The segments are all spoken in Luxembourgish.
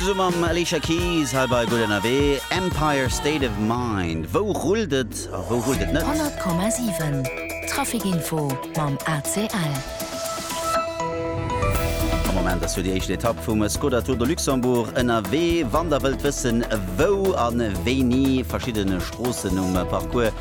Zesumme mam Alicia Keys hei bei Gutt ënnerwee, Empire State of Mind. Wou rullt et a wou rullt et net? 100,7 Traficinfo mam ACL. Am Moment ass fir déi éischt Etapp vum Skoda Tour de Luxembourg ënnerwee. Wann der wëllt wëssen wou an wéini verschiddene Stroossen um Parcours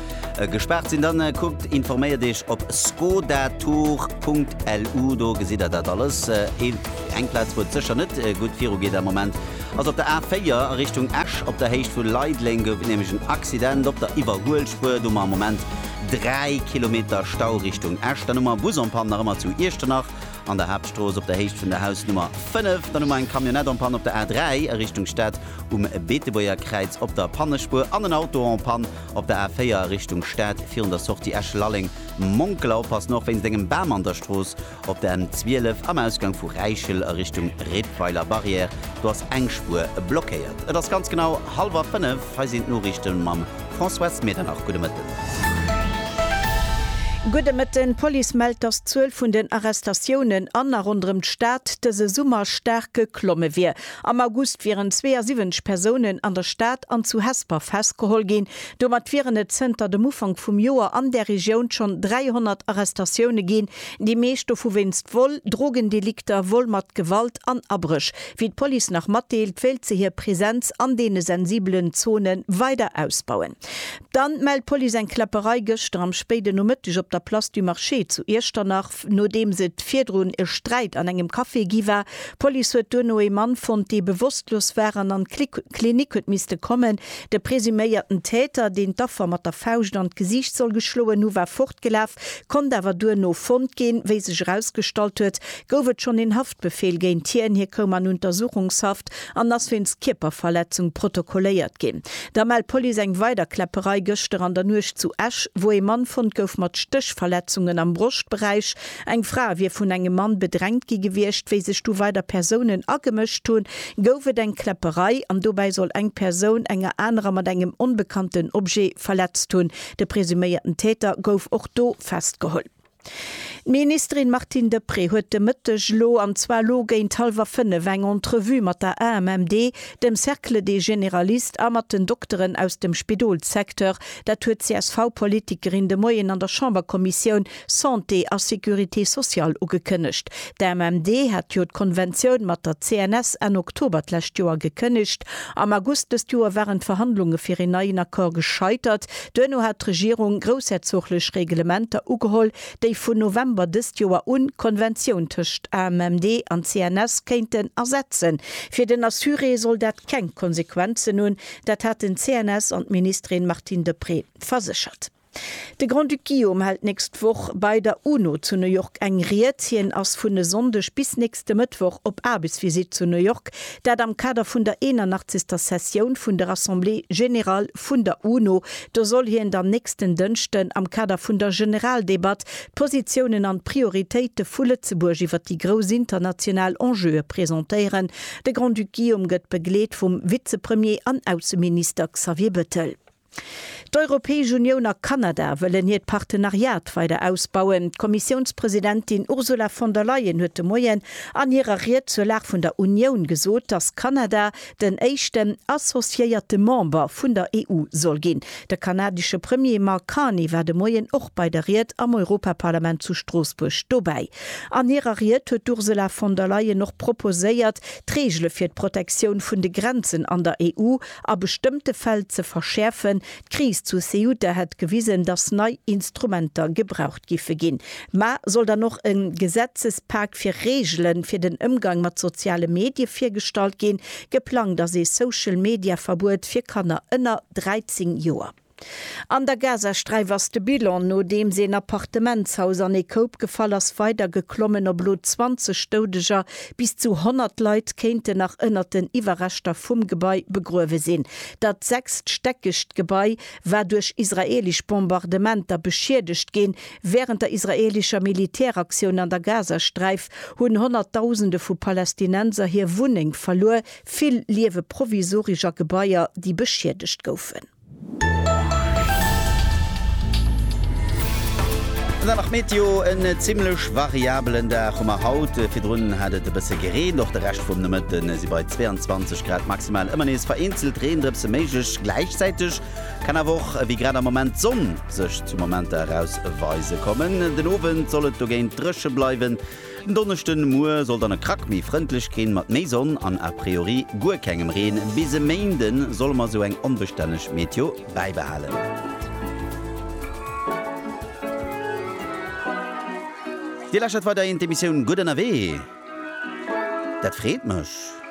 Gespaart sinn, dann kuckt, informéiert iech op skodatour.lu, do gesitt der dat alles. Eng Plaz wou et sécher net gutt viru geet am Moment ass op der A4 a Richtung Esch. Op der Héicht vu Leideleng gouf et nämlech en Accident op der Iwwerhuelspuer, do hu mer am Moment 3 Kilometer Stau Richtung Esch. Dann hu mer Bus en Panne nach ëmmer zu Iechternach an der Haaptstrooss op der Héicht vun der Hausnummer 5. Dann hu mer eng Camionnette en Panne op der A3 a Richtung Stad um Beetebuerger Kräiz op der Pannespuer an en Auto en Panne Op der A4 a Richtung Stad virun der Sortie Esch-Lalleng, Monkeler oppassen, och wéinst engem Bam an der Strooss. Op der M12 am Ausgang vu Räichel a Richtung Rippweiler Barrière, do ass eng Spuer blockéiert. Et ass ganz genau hallwer 5, hei sinn d'Noriichte mam François Medernach. Gudde Mëtten. Gudde Mëtten. D'Police mellt, dass d'Zuel vun den Arrestatiounen an a ronderëm d'Stad dëse Summer staark geklomme wier. Am August wieren 72 Persounen an der Stad an zu Hesper festgeholl ginn. Domat wieren et zënter dem Ufank vum Joer an där Regioun schonn 300 Arrestatioune ginn, déi meescht dovu wéinst Vol, Drogendelikter, Vol mat Gewalt an Abréch. Wéi d'Police nach matdeelt, wéilt se hir Presenz an deene sensibelen Zone weider ausbauen. Dann mellt d'Police eng Kläpperei gëschter am spéiden Nomëtteg op der Place du Marché zu Iechternach. nodeems et virdrun e Sträit an engem Café gi war. D'Police huet duerno ee Mann fonnt, dee bewosstlos war an an d'Klinik huet misste kommen. De presuméierten Täter, deen d'Affer mat der Fauscht an d'Gesiicht soll geschloen hu war fortgelaf, konnt awer duerno fonnt ginn. Wéi sech erausgestallt huet, gouf et schonn een Befehl géint hien. Hie koum an Untersuchungshaft an ass wéinst Kierperverletzung protokolléiert ginn. Da mellt d'Police eng weider Kläpperei gëschter an der Nuecht zu Esch, wou ee Mann fonnt gouf mat Stéchverletzungen am Broschtberäich. Eng Fra wier vun engem Mann bedrängt gi gewiescht. Wéi sech du weider Persounen agemëscht hunn, gouf et eng Kläpperei an dobäi soll eng Persoun enger anerer mat engem onbekannten Objet verletzt hunn. De presuméierten Täter gouf och do festgeholl. D'Ministerin Martine Deprez huet de Mëtteg elo, an zwar elo géint hallwer fënnef, eng Entrevue mat der AMMD, dem Cercle des Généralistes a mat den Dokteren aus dem Spidolssecteur. Dat huet d'CSV-Politikerin de Moien an der Chamberkommissioun Santé a Sécurité sociale ugekënnegt. D'AMMD hat jo d'Konventioun mat der CNS Enn Oktober d'lescht Joer gekënnegt. Am August dëst Joer waren d'Verhandlunge fir een neien Accord gescheitert. Duerno hat d'Regierung groussherzoglech Reglementer ugeholl, déi vun November dëst Joer un d'Konventioun tëscht AMMD an CNS kéinten ersetzen. Fir den Assuré soll dat keng Konsequenzen hunn, dat hat den CNS an d'Ministerin Martine Deprez verséchert. De Grand-Duc Guillaume hält nächst Woch bei der UNO zu New York eng Ried. Hien ass vun e Sonndeg bis nächste Mëttwoch op Aarbechtsvisitt zu New York, Dat am Kader vun der 81. Sessioun vun der Assemblée générale vun der UNO. Do soll hien dann nächsten Dënschden am Kader vun der Generaldebatt d'Positiounen an d'Prioritéite vu Lëtzebuerg iwwer déi grouss international Enjeue presentéieren. De Grand-Duc Guillaume gëtt begleet vum Vizepremier an Ausseminister Xavier Bettel. D'Europäesch Unioun a Kanada wëllen hiert Partenariat weider ausbauen. D'Kommissiounspresidentin Ursula von der Leyen huet de Moien an hirer Ried zur Lag vun der Unioun gesot, datt Kanada den éischten associéierte Member vun der EU soll ginn. De kanadesche Premier Mark Carney war de Moien och bei der Ried am Europaparlament zu Stroossbuerg dobäi. An hirer Ried huet d'Ursula von der Leyen och proposéiert, d'Reegele fir d'Protektioun vun de Grenzen an der EU a bestëmmte Fäll ze verschäerfen. D'Kris zu Ceuta hätt gewisen, datt nei Instrumenter gebraucht giffe ginn. Mä soll dann och e Gesetzespak fir Reegele fir den Ëmgang mat soziale Medie virgestallt ginn? Geplangt ass ee Social-Media-Verbuet fir Kanner ënner 13 Joer. An der Gazasträif ass de Bilan, nodeems een Appartementshaus an ee Koup gefall ass, weider geklommen op elo 20 Doudeger. Bis zu 100 Leit kéinten nach ënnert den Iwwerreschter vum Gebai begruewe sinn. Dat sechststäckegt Gebai war duerch israeelesch Bombardementer beschiedegt ginn. Wärend der israeelescher Militäraktioun an der Gazasträif hunn Honnertdausende vu Palästinenser hir Wunneng verluer, vill liewe provisoresch a Gebaier, déi beschiedegt goufen. An dann nach d'Meteo, En zimmlech variabelen Dag hu mer haut. Virdrun hat et e bësse gereent. Och de Rescht vum Nomëtte si bei 22 Grad maximal ëmmer nees vereenzelt Reendrëpse méiglech. Gläichzäiteg kann awer och, wéi grad am Moment, d'Sonn sech zu Momenter eraus weise kommen. Den Owend soll et dogéint dréche bleiwen, Den Donneschde Muer soll dann e Krack méi frëndlech ginn, mat méi Sonn an a priori guer kengem Reen. Bis e Méinde solle mer esou eng onbestänneg Meteo bäibehalen. Dir läschert weiderhin d'Emissioun Gutt Ënnerwee. Dat freet mech.